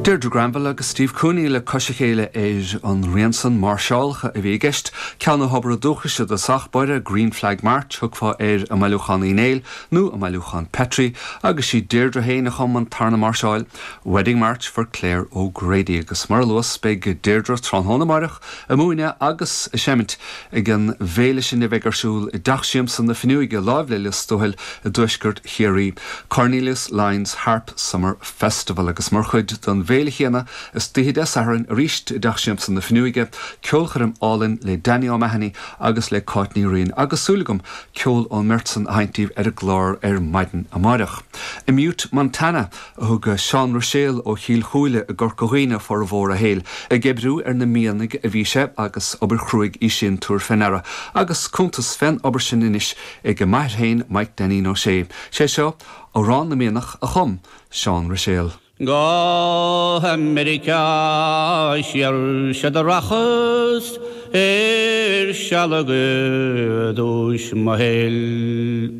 Deirdre Granville agus Steve Cooney le cois a chéile ar an rian san. Máirseálacha a bhí i gceist, ceann ó thobar an dúchais i dtosach báire, Green Flag March thiocfá air i mbailiúchán Uí Néill nó i mbailiúchán Petrie, agus sí Deirdre féin a chum an tarna máirseáil, Wedding March for Clare O'Grady, agus mar a luas beidh Deirdre tráthnóna amáireach ag múineadh agus ag seimint, Ag an bhféile sin a bheidh ar siúl i dTeach Siamsa na Finiúige láimh le Lios Tuathail i dTuaisceart Chiarraí, Cornelius Lyons Harp Summer Festival, agus mar chuid den bhféile chéanna istoíche Dé Sathairn arís i dTeach Siamsa na Finiúige, ceolchoirm álainn le Danny O'Mahony agus le Cáit Ní Riain, agus súil agam ceol ón mbeirt san a sheinnt daoibh ar an gclár ar maidin amáireach. I mButte Montana. a thug Seán Ruiséal ó Chill Chúile i gCorca Dhuibhne formhór a shaoil. Ag oibriú ar na mianaigh a bhí sé agus obair chruaidh í sin, tabhair fé ndeara, agus cuntas fén obair sin anois ag m'athair féin, Maidhc Dainín Ó Sé. Sé seo Amhrán na Mianach a chum Seán Ruiséal. Go h-America siar sea do rachas ar sealg i dtúis mo shaoil.